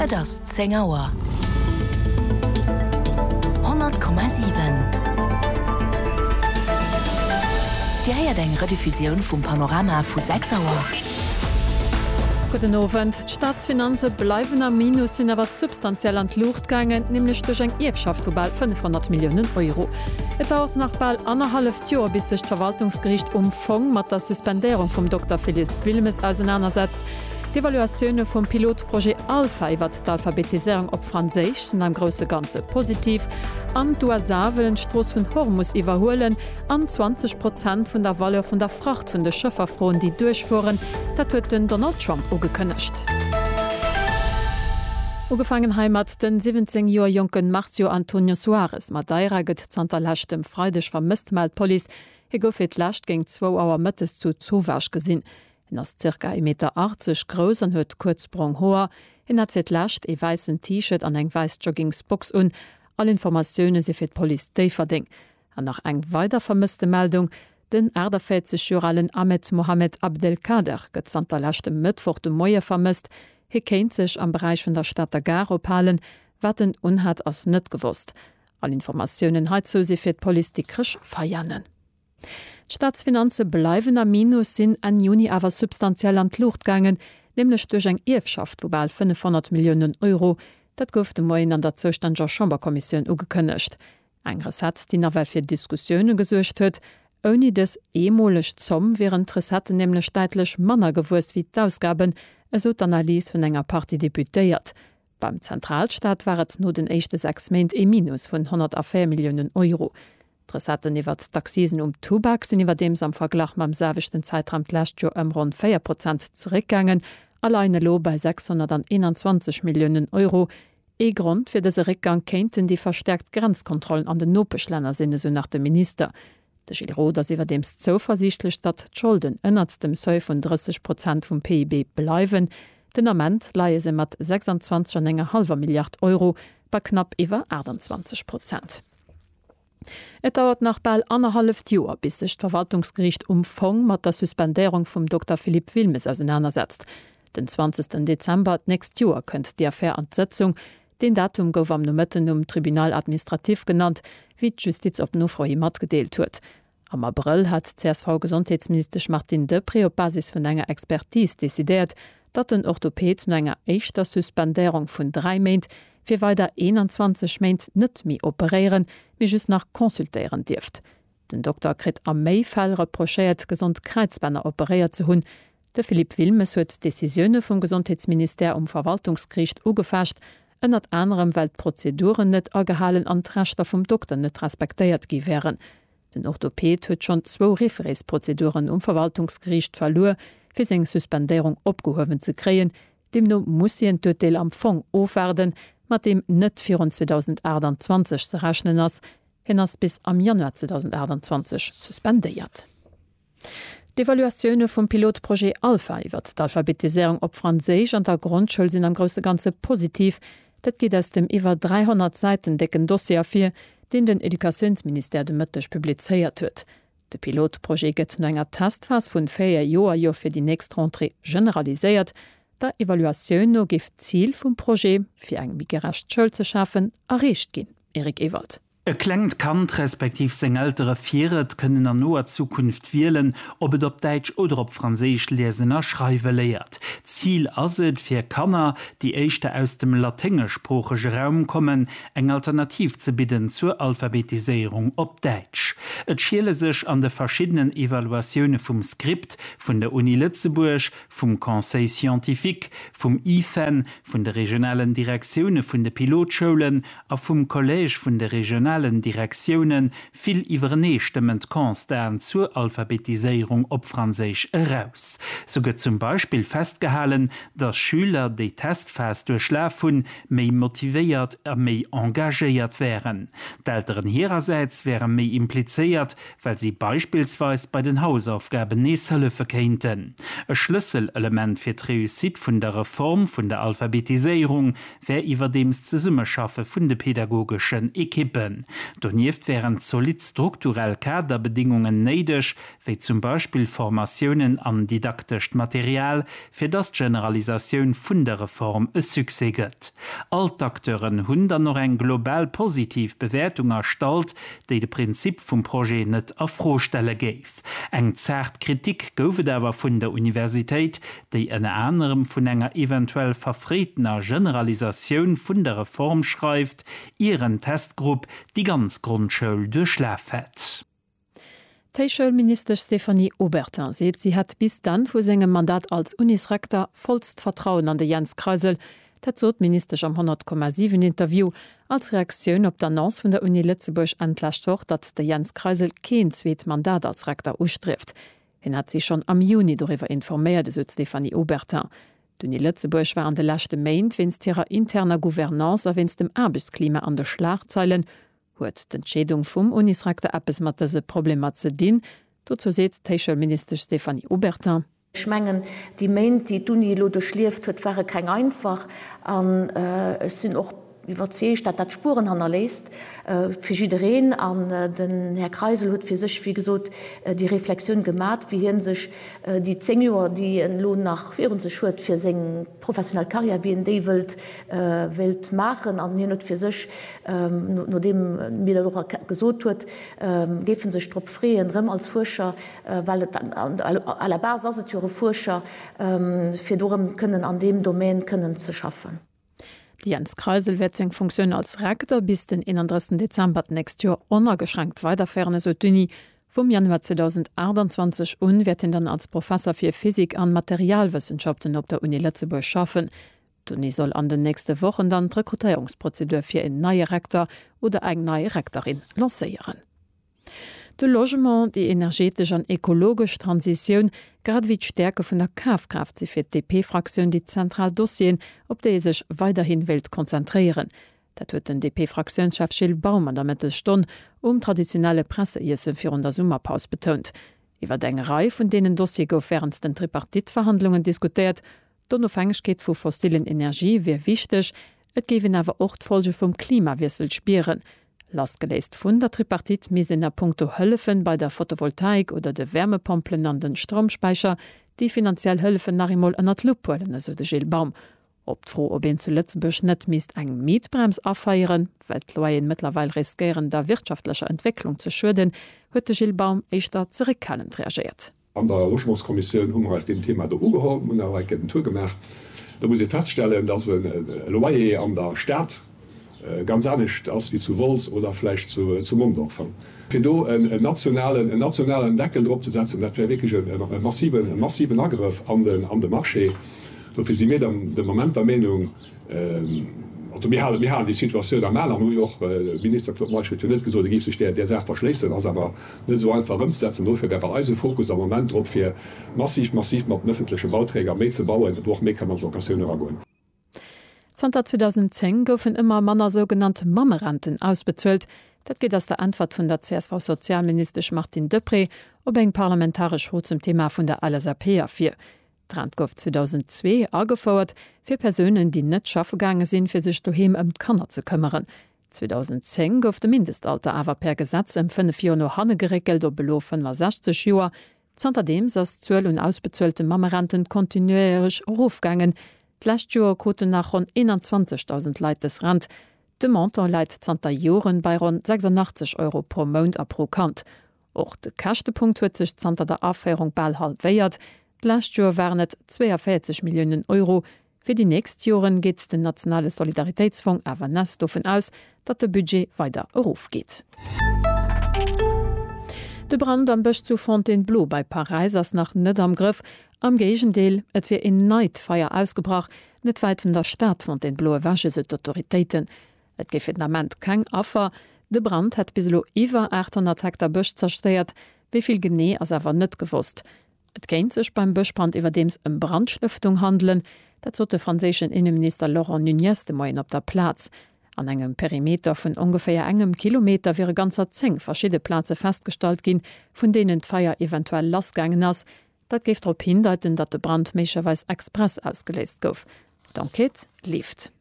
Et ass zéng Auer. 100,7. Dir héiert eng Rediffusioun vum Panorama vu 6 Auer. Gudden Owend. D'Staatsfinanze bleiwen am Minus, sinn awer substantiell an d'Luucht gaangen, nämlech duerch eng Ierfschaft vu bal 500 Milliounen Euro. Et dauert nach bal annerhalleft Joer, bis sech d'Verwaltungsgeriicht um Fong mat der Suspendéierung vum Dokter Philiisp Wilmes ausenanersetzt. D'Evaluatioune vum Pilotprojet Alpha iwwert d'Alphabetiséierung op Franséisch sinn am grousse Ganze positiv. An d'USA wëllen d'Strooss vun Hormus iwwerhuelen an 20 Prozent vun der Valeur vun der Fracht vun de Schëffer froen, déi duerchfueren. Dat huet den Donald Trump ugekënnegt. Ugefaangen heimat, De 17 Joer jonke Marcio Antonio Soares Madeira gëtt zanter leschtem Freideg vermësst, mellt d'Police. Hie gouf fir d'lescht géint zwou Auer mëttes zu Zovage gesinn. En ass zirka ee Meter aachzeg grouss an huet kuerz brong Hoer. Hien hat fir d'lescht ee wäissen T-Shirt an eng wäiss Joggingsbox un. All Informatioune si fir d'Police Déifferdeng. An nach eng weider Vermësstemeldung, Den 48 Joer alen Ahmed Mohamed Abdelkader gëtt zanter leschtem Mëttwoch de Moie vermësst. Hie kéint sech am Beräich vun der Stater Gare ophalen. Wat en unhat, ass net gewosst. All Informatiounen heizou si fir d'Police Dikrech Veianen. D'Staatsfinanze bleiwen am Minus, sinn Enn Juni awer substantiell an d'Luucht gaangen, nämlech duerch eng Ierfschaft vu bal 500 Milliounen Euro. Dat gouf de Moien an der zoustänneger Chamberkommissioun ugekënnegt. Eng Recette, déi nawell fir Diskussioune gesuergt huet. Ouni dës eemoleg Zomm wieren d'Recetten nämlech däitlech manner gewuess wéi d'Ausgaben, esou d'Analys vun enger Partie Deputéiert. Beim Zentralstaat war et no den éischte sechs Méint ee Minus vun 104 Milliounen Euro. D'Recetten iwwert d'Accisen um Tubak sinn iwwerdeems am Verglach mam selwechten Zäitraum d'lescht Joer ëm ronn 4 Prozent zeréckgaangen a leien elo bei 621 Milliounen Euro. Ee Grond fir dëse Réckgang kéinten déi verstäerkt Grenzkontrollen an den Nopeschlänner sinn, esou nach de Minister. De Gilles Roth ass iwwerdeems zouversiichtlech, datt d'Scholden ënnert dem Seuil vun 30 Prozent vum PIB bleiwen. Den Ament leie se mat 26 an enger hallwer Milliard Euro bei knapp iwwer 28 Prozent. Et dauert nach bal annerhalleft Joer, bis sech d'Verwaltungsgeriicht um Fong mat der Suspendéierung vum Dokter Philippe Wilmes ausenanersetzt. Den 20 Dezember d'nächst Joer kënnt déi Affär an d'Sëtzung. Deen Datum gouf am Nomëtten um Tribunal administratif genannt, wéi d'Justiz op Nofro hi matgedeelt huet. Am Abrëll hat d'CSV-Gesondheetsministesch Martine Deprez op Basis vun enger Expertis decidéiert, datt den Orthoped no enger éischter Suspendéierung vun dräi Méint fir weider 21 Méint net méi operéieren, mee just nach consultéieren dierft. Den Dokter kritt a méi Fäll reprochéiert, gesond Kräizbänner operéiert ze hunn. De Philippe Wilmes huet d'Decisioune vum Gesondheetsministère um Verwaltungsgeriicht ugefecht, ënnert anerem well d'Prozeduren net agehalen an d'Rechter vum Dokter net respektéiert gi wären. Den Orthoped huet schonn zwou Refereesprozeduren um Verwaltungsgeriicht verluer, fir seng Suspendéierung opgehuewen ze kréien. Deemno muss hien d'Urteel am Fong ofwaarden, mat deem net virun 2028 ze rechnen ass. Hien ass bis am Januar 2028 suspendéiert. D'Evaluatioune vum Pilotprojet Alpha iwwert d'Alphabetiséierung op Franséisch an der Grondschoul sinn am grousse Ganze positiv. Dat geet aus dem iwwer 300 Säiten décken Dossier ervir, deen den Educatiounsministère de Mëtteg publizéiert huet. De Pilotprojet gëtt no enger Testphas vun 4 Joer jo fir déi nächst Rentrée generaliséiert. Der Evaluatioun no géif d'Zil vum Projet, fir eng méi gerecht Schoul ze schafen, erreecht ginn. Eric Ewald. E klengt Kand respektiv seng Eltere fir et kënnen an noer Zukunft wielen, ob et op Däitsch oder op Franséisch liesen a schreiwe léiert. D'Zil ass et, fir Kanner, déi éischter aus dem laténgeschsproochege Raum kommen, eng Alternativ ze bidden zur Alphabetiséierung op Däitsch. Et schiele sech an de verschiddenen Evaluatioune vum Script vun der Uni Lëtzebuerg, vum Conseil scientifique, vum IFEN, vun de regionalen Direktioune vun de Pilotschoulen a vum Collège vun de regionalen Direktioune vill iwwereneestëmmend Constaten zur Alphabetiséierung op Franséisch eraus. Sou gëtt zum Beispill festgehalen, datt Schüler, déi d'Testphas duerchlaf hunn, méi motivéiert a méi engagéiert wären. D'Elteren hirersäits wäre méi implizéiert, well si beispillsweis bei den Hausaufgaben nees hëllefe kéinten. E Schlësselelement fir d'Réussite vun der Reform vun der Alphabetiséierung wär iwwerdeems d'Zesummeschaffe vun de pedagogeschen Ekippen. Donieft wären zolidd strukturell Kaderbedingungen néideg, wéi zum Beispill Formatiounen an didaktescht Material, fir dass d'Generalisatioun vun der Reform e Succès gëtt. All d'Acteuren hunn dann och eng global positiv Bewäertung erstallt, déi de Prinzip vum Projet net a Fro stelle géif. Eng zaart Kritik gouf et awer vun der Universitéit, déi ënner anerem vun enger eventuell verfréitener Generalisatioun vun der Reform schreift, ier en Testgrupp déi ganz Grondschoul duerchlaf hätt. D'Héichschoulministesch Stéphanie Obertin seet, si hätt bis d'Enn vu sengem Mandat als Unisrekter vollst Vertrauen an de Jens Kreisel. Dat sot d'Ministesch am 100,7 Interview als Reaktioun op d'Annonce vun der Uni Lëtzebuerg Enn d'lescht Woch, datt de Jens Kreisel keen zweet Mandat als Rekter ustrieft. Hien hätt si schonn am Juni doriwwer informéiert, esou d'Stéphanie Obertin. D'Uni Lëtzebuerg war an de leschte Méint wéinst hirer interner Gouvernance a wéinst dem Aarbechtsklima an de Schlagzeilen. Huet d'Entscheedung vum Unisrecteur eppes mat dëse Problemer ze dinn? Dozou seet d'Héichschoulministesch Stéphanie Obertin. Ech mengen, déi Méint, déi d'Uni elo duerchlieft huet, ware keng einfach. An ech sinn och iwwerzeegt, dat dat Spueren hannerléisst fir jiddereen. An den Här Kreisel huet fir sech, wéi gesot, déi Reflexioun gemat, wéi hie sech déi zéng Joer, déi en elo nach virun sech huet, fir seng professionell Carrière, wien déi wëllt, wéilt maachen, an hien huet fir sech, nodeem mir dat och gesot huet, géif en sech drop freeën, erëm als Fuerscher, well et à la base ass et jo e Fuerscher, fir do erëm kënnen an deem Domaine kënnen ze schaffen. De Jens Kreisel wäert seng Funktioun als Rektor bis den 31 Dezember d'nächst Joer onageschränkt weiderféieren, esou d'Uni Vum Januar 2028 un wäert hien dann als Professer fir Physik an Materialwëssenschaften op der Uni Lëtzebuerg schaffen. D'Uni soll an den nächste Wochen dann d'Rekrutéierungsprozedur fir een neie Rektor oder eng nei Rektorin lancéieren. De Logement, déi energetesch an ekologesch Transitioun, grad ewéi d'Stäerke vun der Kafkraaft si fir d'DP-Fraktioun déi zentral Dossieren, op déi ee sech weiderhin wéilt konzentréieren. Dat huet den DP-Fraktiounschef Gilles Baum an der Mëttesstonn um traditionelle Presseiesse virun der Summerpaus betount. Iwwer eng Rei vun deenen Dossiere gouf wärend den Tripartite-Verhandlungen diskutéiert. D'Onofhängegkeet vu fossillen Energie wier wichteg, et géif een awer och d'Folge vum Klimawiessel spieren. Lassgeléist vun der Tripartite misst een a punkto Hëllefe bei der Fotovoltaik oder de Wärmepompelen an de Stroumspäicher déi finanziell Hëllefen nach eemol ënnert d'Lupp huelen, esou de Gilles Baum. Op d'Fro, ob een zu Lëtzebuerg net misst eng Mietbrems afeieren, well d'Loyeren mëttlerweil riskéieren der wirtschaftlecher Entwécklung ze schueden, huet de Gilles Baum éischter zeréckhalend reagéiert. An der Logementskommissioun hu mer eis deem Thema do ugeholl, mir hunn awer enk en Tour gemaach. Do muss ee feststellen, datt e Loyer an der Stad, Ganz anescht ass wéi zu Wolz oder vläicht zu Mondorf. Fir do en nationalen Deckel drop ze setzen, dat wär wierklech e massiven Agrëff an de Marché. Dofir si mir de Moment der Meenung, also mir halen déi Situatioun am Al an hu jo och, de Minister Claude Meisch huet jo net gesot, e géif sech där Saach verschléissen, ass awer net esou einfach ëmzesetzen. Dofir wär bei eis e Fokus am Moment drop, fir massiv mat den ëffentleche Bauträger méi ze bauen, wou och méi ka mat Locatioun eragoen. Zanter 2010 goufen ëmmer manner sougenannt Mammerenten ausbezuelt. Dat geet aus der Äntwert vun der CSV-Sozialministesch Martine Deprez op eng parlamentaresch Fro zum Thema vun der LSAP ervir. D'Rent gouf 2002 agefouert fir Persounen, déi net schaffe gaange sinn, fir sech doheem ëm d'Kanner ze këmmeren. 2010 gouf de Mindestalter awer per Gesetz ëm fënnef Joer no hanne geréckelt op elo 65 Joer. Zanterdeems ass d'Zuel un ausbezuelte Mammerenten kontinuéierech erofgaangen. D'lescht Joer kruten nach ronn 21.000 Leit dës Rent. De Montant läit zanter Joren bei ronn 86 Euro pro Mount a pro Kand. Och de Käschtepunkt huet sech zanter der Aféierung bal halwéiert, d'lescht Joer waren et 42 Milliounen Euro, Fir déi nächst Joren geet den nationale Solidaritéitsfong awer nes dovun aus, datt de Budget weider erofgeet. De Brand am Bësch zu Fontainebleau bei Paräis ass nach net am Grëff. Am Géigendeel, et wier een neit Feier ausgebrach, net wäit vun der Stad Fontainebleau ewech, esou d'Autoritéiten. Et géif fir den Ament keng Affer. De Brand hätt bis elo iwwer 800 Hektar Bësch zerstéiert, wéi vill genee ass awer net gewosst. Et kéint sech beim Bëschbrand iwwerdeems ëm Brandstëftung handelen. Dat sot de franséischen Inneminister Laurent Nunez de Moien op der Plaz. An engem Perimeter vun ongeféier engem Kilometer wiere ganzer 10 verschidde Plaze festgestallt ginn, vun deenen d'Feier eventuell lassgaangen ass. Dat géif drop hindeiten, datt de Brand méiglecherweis express ausgeléist gouf. D'Enquête leeft.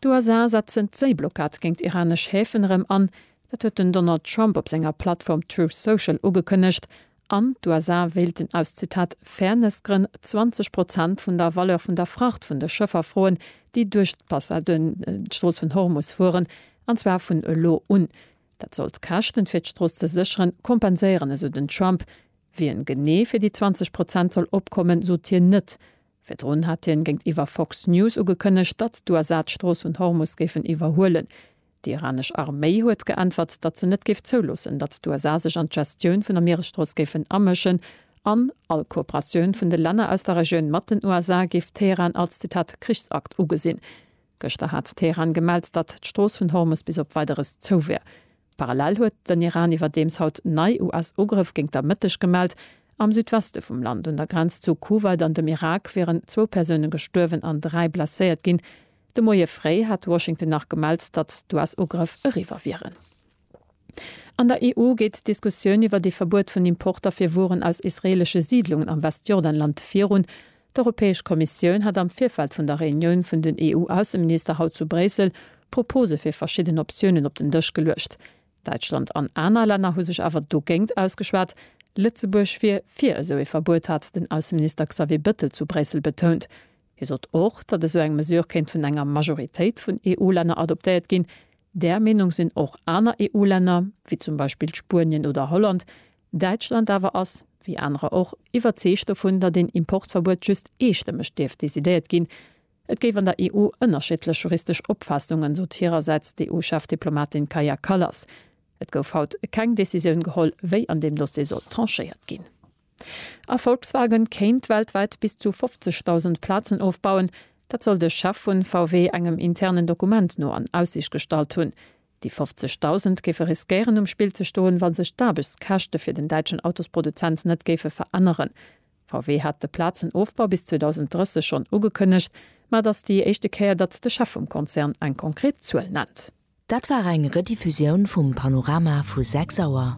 D'USA setzen d'Séiblockad géint iranesch Häfen erëm an. Dat huet den Donald Trump op senger Plattform Truth Social ugekënnegt. An d'USA wéilten aus, Zitat, Fairness-Grënn 20 Prozent vun der Valeur vun der Fracht vun de Schëffer froen, déi duerch d'Strooss vun Hormus fueren, an zwar vun elo un. Dat soll d'Käschten, fir d'Strooss ze sécheren, kompenséieren, esou den Trump. Wien genee fir déi 20 Prozent soll opkommen, sot hien net. Virdrun hat hien géintiwwer Fox News ugekënnegt, datt d'USA d'Strooss vun Hormus géifen iwwerhuelen. Déi iranesch Arméi huet geäntwert, datt se net géif zouloossen, datt d'USA sech an d'Gestioun vun der Mieresstrooss géifen amëschen an all Kooperatioun vun de Länner aus der Regioun mat den USA géif Teheran als, Zitat, Krichsakt ugesinn. Gëschter hat Teheran gemellt, datt d'Strooss vun Hormus bis op Weideres zou wär. Parallel huet den Iran iwwerdeems haut nei US-Ugrëff géint der Mëtteg gemellt. Am Südweste vum Land, un der Grenz zu Kuwait an dem Irak, wieren zwou Persoune gestuerwen an dräi blesséiert ginn. De Moie fréi hat Washington nach gemellt, datt d'US-Ugrëff eriwwer wieren. An der EU geet d'Diskussioun iwwert ee Verbuet vun Importer fir Wueren aus israeelesche Siidlungen am Westjordanland virun. D'Europäesch Kommissioun hat am Virfeld vun der Reunioun vun den EU-Ausseminister haut zu Bréissel Propose fir verschidden Optiounen op den Dësch geluecht. Däitschland an aner Länner hu sech awer dogéingt ausgeschwat. Lëtzebuerg wier fir esou ee Verbuet, hat den Ausseminister Xavier Bëttel zu Bréissel betount. Hie sot och, datt esou eng Mesure kéint vun enger Majoritéit vun EU-Länner adoptéiert ginn. Där Meenung sinn och aner EU-Länner, wéi zum Beispill Spuenien oder Holland, Däitschland awer ass, wéi anerer och, iwwerzeegt dovun, datt een Importverbuet just eestëmmeg dierft decidéiert ginn. Et géif an der EU ënnerschiddlech juristesch Opfaassungen, sot hirersäits d'EU-Chefdiplomatin Kaja Kallas. Et gouf haut keng Decisioun geholl, wéi an deem Dossier soll tranchéiert ginn. A Volkswagen kéint weltwäit bis zu 50.000 Plazen ofbauen. Dat soll de Chef vun VW engem internen Dokument no an Aussiicht gestallt hunn. Déi 50 Dausend géife riskéieren um Spill ze stoen, wa sech d'Aarbechtskäschte fir den däitschen Autosproduzent net géife veränneren. VW hat de Plazenofbau bis 2030 schonn ugekënnegt, ma et ass déi éischte Kéier, datt de Chef vum Konzern eng konkret Zuel nennt. Dat war eng Rediffusioun vum Panorama vu 6 Auer.